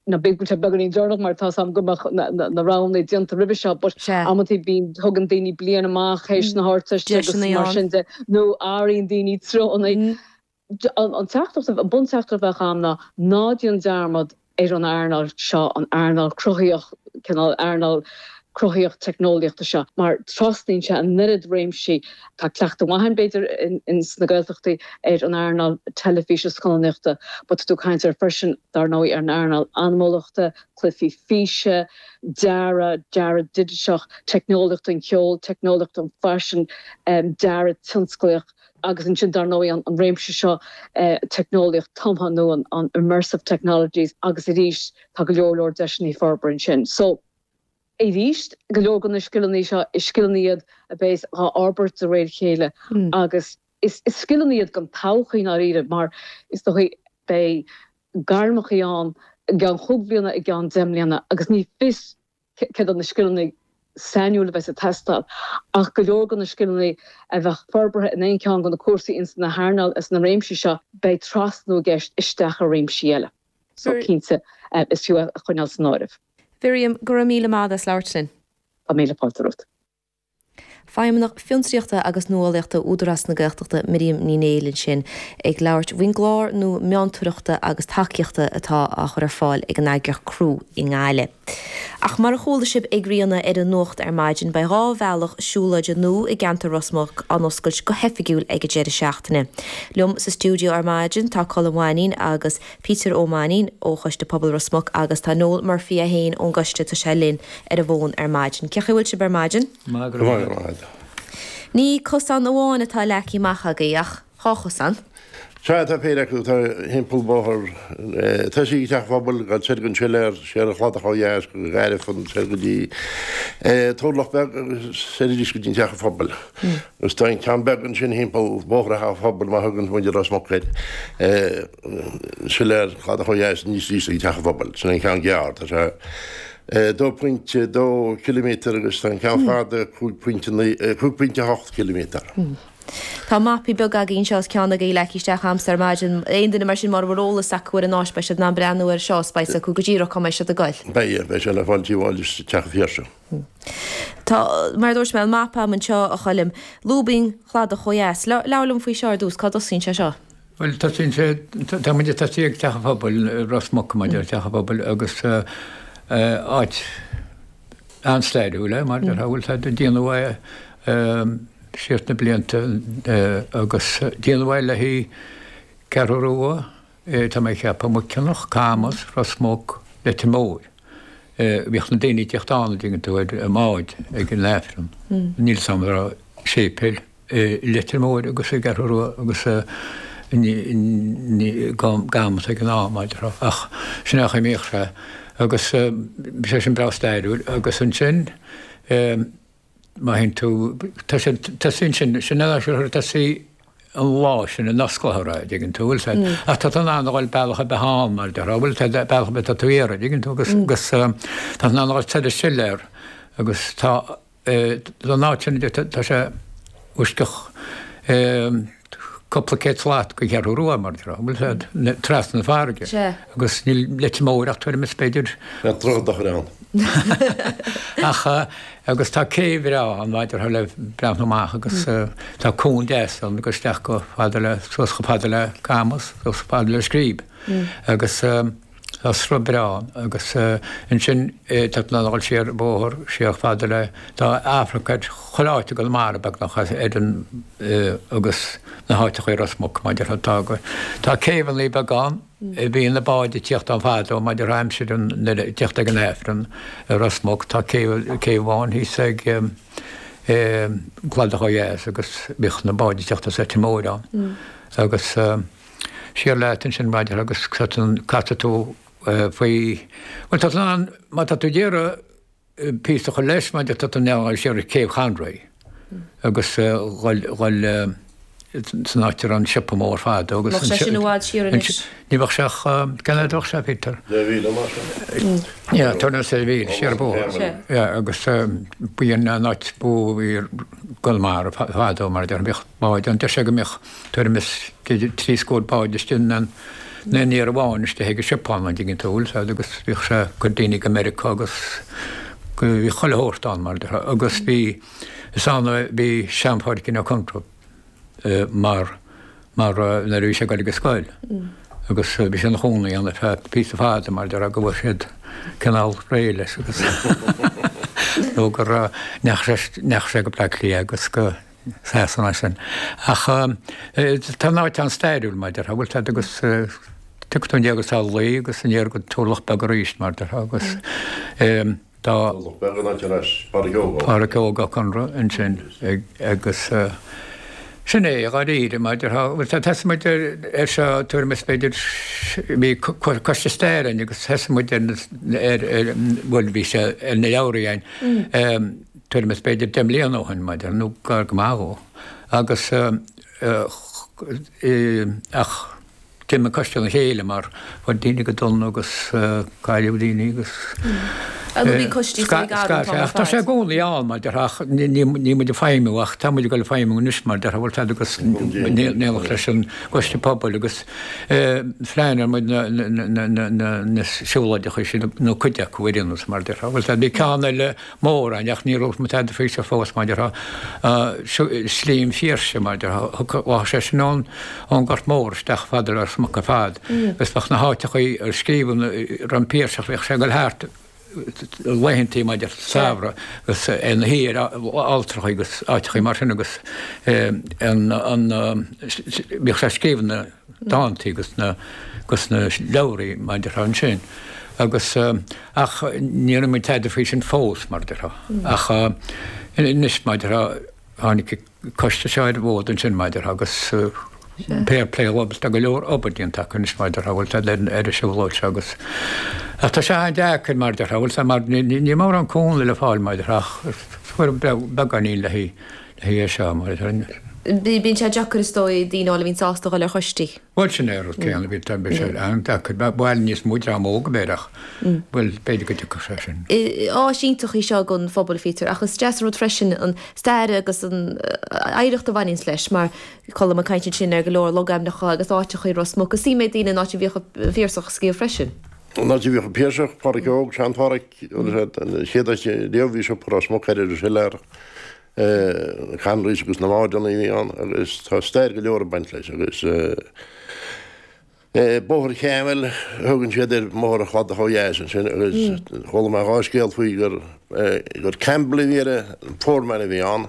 Now beidh sé beagáinín deireanach mar tá a fhios agam go mbeadh na roghanna déanta roimhe seo but amantaí bíonn, tugann daoine bliain amach théis na hArdteiste agus mar sin de nó athraíonn daoine treonna. An teachtaireacht, an bunteachtaireacht a bheadh agam ná ná déan dearmad ar an earnáil seo, an earnáil cruthaíocht, cineál earnáil cruthaíocht teicneolaíochta seo mar trasnaíonn sé an oiread réimsí. Tá cleachtadh maith ann, b'fhéidir, ins na Gaeltachtaí ar an earnáil teilifíse is scannánaíochta but tá tú ag caint air freisin, dar ndóigh, ar an earnáil anamúlachta, cluichí físe, dearadh, dearadh digiteach, teicneolaíocht an cheoil, teicneolaíocht an faisin, dearadh tionsclaíoch agus ansin, dar ndóigh, an an réimse seo teicneolaíocht tumtha nó an immersive technologies agus arís tá go leor leor deiseanna ag forbairt ansin. So. Arís, go leor de na scileanna seo is scileanna iad a bheas dhá fhorbairt de réir a chéile agus is scileanna iad don todhchaí i ndáiríre mar is dócha beidh gairmeacha ann i gceann chúig bhliana, i gceann deich mbliana agus ní fios céard iad na scileanna sainiúil a bheas ag teastáil ach go leor de na scileanna a bheadh forbartha in aon cheann de na cúrsaí ins na hearnáil is na réimsí seo beidh trasnú i gceist isteach i réimsí eile so cinnte is fiú é a choinneáil san áireamh. Mhiriam, Go raibh míle maith agat as labhairt linn. Tá míle fáilte romhat. Feidhmeannach Fiontraíochta agus Nuálaíochta Údarás na Gaeltachta, Miriam Ní Néill ansin ag labhairt faoin gclár nua meontoireachta agus tacaíochta atá á chur ar fáil ag an eagraíocht CREW i nGaillimh. Ach mar a chuala sibh ag Ríona ar an nuacht ar maidin, beidh dhá bhealach siúlóide nua i gceantar Ros Muc á n-oscailt go hoifigiúil ag an deireadh seachtaine. Liom sa stiúideo ar maidin tá Colm Ó Mainín agus. Peter Ó Mainín ó Choiste Pobail Ros Muc agus tá Noel Murphy é féin ón gcoiste, tá sé linn ar an bhfón ar maidin. Cé chaoi a bhfuil sibh ar maidin? Maith go leor. Ní cosán amháin atá leagtha amach agaibh ach dhá chosán. Sea, tá péire acu, tá thimpeall bóthar ag tosaí ag Teach an Phobail ag goil soir go Siléar, siar an Chladach ó Dheas go Gairfean soir go dtí Turlach Beag agus soir arís go dtí Teach an Phobail. Agus tá an ceann beag ansin thimpeall bóithre Theach an Phobail mar a thugann muintir Ros Muc air. Siléar, Cladach ó Dheas, aníos arís ag Teach an Phobail. Sin an ceann gearr. Tá sé 2.2 km agus tá an ceann fada 5.8 km. Tá mapaí beaga againn anseo is ceann acu leagtha isteach agamsa ar maidin. Aon duine mar sin mara bhfuil eolas acu ar an áit beidh siad in ann breathnú air seo is beidh a fhios acu go díreach cá mbeidh siad ag goil. Beidh, beidh sé le fáil Tigh Mháille is Teach an Phiarsaigh. Tá, mar a dúirt mé, an mapa agam anseo, a Choilm. Lúb an Chladach ó Dheas. Labhair liom faoi seo ar dtús, cá dtosaíonn sé seo? Bhuel, tosaíonn sé, tá muid, tá sí ag Teach an Phobail, Ros Muc, mar deir Teach an Phobail, agus áit an-stairiúil é, mar a déarfá, bhuel, tá, déanadh é siar sna blianta agus déanadh é le haghaidh Ceathrú Rua, Eh, tá mé a' ceapadh Muiceanach, Camas, Ros Muc, Leitir Móir. Eh, bhíodh na daoine ag tíocht ann, a' dtuigeann tú, ar a mbáid ag an aifreann. Níl 's 'am a' raibh séipéal i Leitir Móir agus i gCeathrú Rua agus eh ní, ní, i gCamas ag an am, mar a déarfá, ach sin é an chaoi a mbíodh sé agus eh bhí sé sin breá stairiúil agus ansin eh, Má théann tú, tá sé, tá sí ansin, sin an áit ar thoir, tá sí an lá sin in Osclair a rá, dtuigeann tú, bhfuil sé. Ach tá tú in ann a ghoil bealach ar bith ann, mar a déarfá, bhfuil a fhios a'd, bealach ar bith atá tú a iarraidh, dtuigeann tú, agus, agus tá tú in ann a ghoil soir an Siléar, agus tá, ón áit sin, tá sé i bhfoisceacht. cúpla céad slat don Cheathrú Rua, mar a déarfá, bhuel, trasna na farraige. Sea. Agus níl Leitir Móir ach tuairim is b'fhéidir. Bheadh droichead dochair ann. Ach agus tá céibh bhreá ann mar a déarfá le breathnú amach agus tá cuan deas ann ag dul isteach chomh fada le, suas chomh fada le Camas, suas chomh fada le Scríb. Agus. Tá sruth breá ann agus ansin tá tú in ann a ghoil siar bóthar siar chomh fada le tá amharc ar chuile áit i gConamara beagnach ann agus na háiteachaí i Ros Muc mar a déarfá tá go tá céibheannaí beaga ann a bhí na báid ag tíocht ann fadó mar a déarfá aimsir an nuair a tíocht ag an Aifreann i Ros Muc tá céibh céibh amháin thíos ag Cladach Ó Dheas agus bhíodh na báid ag tíocht as Leitir Móir ann agus Siar leat ansin mar a déarfá agus casfaidh tú faoi, bhuel tá tú in ann, má tá tú ag iarraidh píosa a chur leis mar a déarfá tá tú in ann a ghoil siar Céibh Chonraí agus a ghoil san áit a raibh an siopa mór fadó agus. Bheadh sé sin i bhfad siar anois. Ní bheadh sé ach, cén fhad a bheadh sé, Peter? Deich mhíle mar sin. Yeah, tá na sé mhíle siar a bhfuil. Yeah, agus ba í an áit ba mhó i gConamara fadó mar a deir an bhiocht, má deir sé go mbeadh tuairim is trí scór bád istigh in aon iarraidh amháin istigh ag an Siopa ann, an dtuigeann tú, bhuel, sea, agus bhíodh sé ag cur daoine go Meiriceá agus go, bhí chuile shórt ann, mar a déarfá, agus bhí, is ann a bhí Sean-Phádraic Ó Conaire mar, mar nuair a bhí sé ag dul ag an scoil agus bhí sé ina chónaí ann ar feadh píosa fada mar a déarfá go bhfuair siad cineál réidh leis agus nó gur, ndeachaigh sé, ndeachaigh sé go Bleá Cliath agus go, Sasana sin. Ach tá an áit an-stairiúil, mar a déarfá, bhfuil a fhios a'd agus tiocfaidh tú aniar go Salalaoi agus aniar go Turlach Beag arís, mar a déarfá, agus tá Turlach Beag an áit arb as, Pádraic Óg Ó. Pádraic Óg Ó Conaire ansin agus sin é, dháiríre, mar a déarfá. Bhuel, tá, thosaigh muid ar seo tuairim is b'fhéidir, bhí coiste staire ann agus thosaigh muid ar na, ar, bhuel, bhí sé ar na leabhraí ann, tuairim is b'fhéidir deich mbliana ó shin mar déarfá, nó gar go maith dhó, agus ach d'imigh an coiste óna chéile mar bhí daoine go dona agus cailleadh daoine agus tá sé i gcónaí ann mar déarfá ach níl muid ag feidhmiú ach tá muid ag dul ag feidhmiú anois mar déarfá bhfuil a fhios agat in éineacht leis an gcoiste pobail agus phleanáil muid na siúlóideacha sin nó cuid acu a dhéanamh mar déarfá bhfuil a fhios agat bhí ceann eile mórán, ach níor rinne muid tada faoi sin fós, mar déarfá, sin Slí an Phiarsaigh, mar déarfá, bheadh sé sin ón nGort Mór isteach ar fud Ros Muc ar fad, agus bheadh na háiteachaí a scríobhann an Piarsach, bhíodh sé ag goil thart laethantaí, mar déarfá, samhraidh agus é ina shuí ar alltrachaí agus áiteachaí mar sin agus bhíodh sé ag scríobh na. dántaí agus na leabhraí, mar déarfá, ansin agus, ach níor rinne muid tada faoi sin fós, mar déarfá. Ach anois, mar déarfá, tháinig coiste seo ar an bhfód ansin, mar déarfá, agus fair play dhóibh, tá go leor obair déanta acu anois, mar déarfá, bhfuil a fhios agat, leis an siúlóid seo agus, ach tá sé an-deacair, mar déarfá, bhfuil a fhios agat, níl mórán cúnamh le fáil, mar déarfá, ach fuair beagáinín léi. Thuigeadh sé mar a bhí. Bíonn sé deacair is dóigh daoine a fháil a bhíonn sásta a dhul ar choistí. Bhuel sin é an rud céanna, bhí tá bhí sé an-deacair, ba mhaith níos mó dream óg a bheith ach bhuel b'fhéidir go dtiocfadh sé sin. Áis iontach í seo don phobal a Pheter ach is deas an rud freisin an stair agus an oidhreacht a bhaineanns leis mar Colm ag caint ansin ar go leor logainmneacha agus áiteacha i Ros Muc is suim ag daoine an áit a bhíodh an Piarsach ag scríobh freisin. An áit a bhíodh an Piarsach, Pádraig Óg, Sean-Phádraig. Chéad áit riamh bhí siopa i Ros Muc ar an Siléar. Conroys agus na modhanna a bhí ann agus tá stair go leor ag baint leis agus Bóthar Cheamhail, thugann siad air Bóthar an Chladaigh taobh ó dheas ansin agus chuala mé dhá scéal faoi gur Campbell a bhí ar an foreman a bhí ann.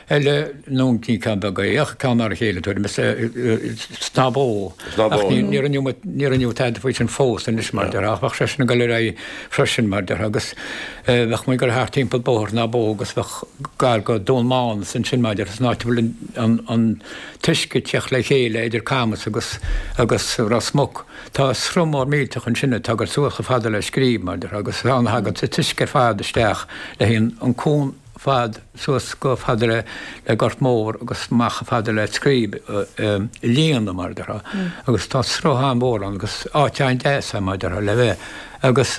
eile nó ní ceann beag é ach ceann mar a chéile tuairim is, Snámh Bó. Snámh Bó. Ach níor rinne muid, níor rinne muid tada faoi sin fós anois mar déarfá ach bheadh sé sin ag dul ar aghaidh freisin mar déarfá agus bheadh muid ag dul thart timpeall Bóthar Shnámh Bó agus bheadh gar go Dún Mánais ansin mar déarfá is an áit a bhfuil an, an t-uisce ag teacht le chéile idir Camus agus, agus Ros Muc. Tá sruth mór millteach ansin ag tarraingt suas chomh fada le Scríb mar déarfá agus tagann, tagann an t-uisce ar fad isteach le haghaidh an cuan, fad suas chomh fada le le Gort Mór agus amach chomh fada le Scríb a líonadh mar a déarfá agus tá sruth an-mhór ann agus áit an-deas ann mar a déarfá le bheith agus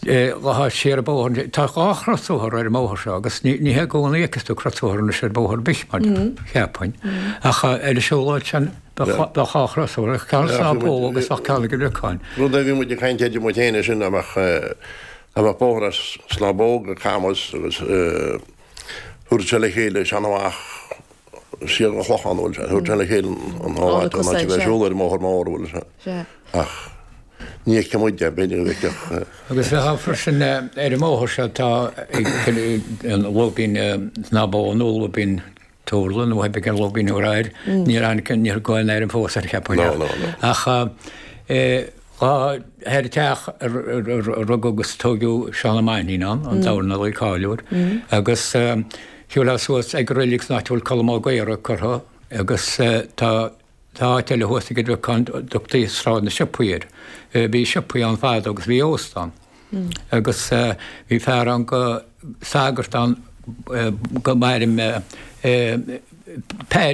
dhá thaobh siar an bóthar. Tá dhá chrosbhóthar ar an mbóthar seo agus ní ní hé i gcónaí a fheiceas tú crosbhóthar anois ar bhóthar ar bith mar cheapfainn ach ar an siúlóid sin tá dhá chrosbhóthar tá ceann i Snámh Bó agus ceann ag an Riocáin. Rud a bhí muid ag caint air amuigh féin é sin amach Tá an bóthar ansin ag Snámh Bó go Camas agus thabharfadh sé le chéile sin amach siar an Clochán a bhfuil sé, thabharfadh sé le chéile an dá áit ná bheith ag siúl ar an mbóthar mór a bhfuil sé ach ní fheicfidh muid é, b'fhéidir go bhfeicfeadh. Agus bheith ann freisin ar an mbóthar seo atá ó Snámh Bó an Lúibín, Tharla nár theip ar an logainm ar air, níor fhanfaidh, níor gá an ainm fós a cheapadh ann. No, no, no. Ach tá thoir teach a rugadh agus a tógadh Seán Ó Mainnín ann, an dornálaí cáiliúil, agus gabháil suas ag reilig san áit a bhfuil Colm Ó Gaora curtha agus tá Tá áit eile thuas ag Doire Choill a dtugtaí Sráid na Siopaí air. Bhí siopaí ann fadó agus bhí óstán. Agus bhí fear ann go, sagart ann gurbh ainm dó, eh, Paddy.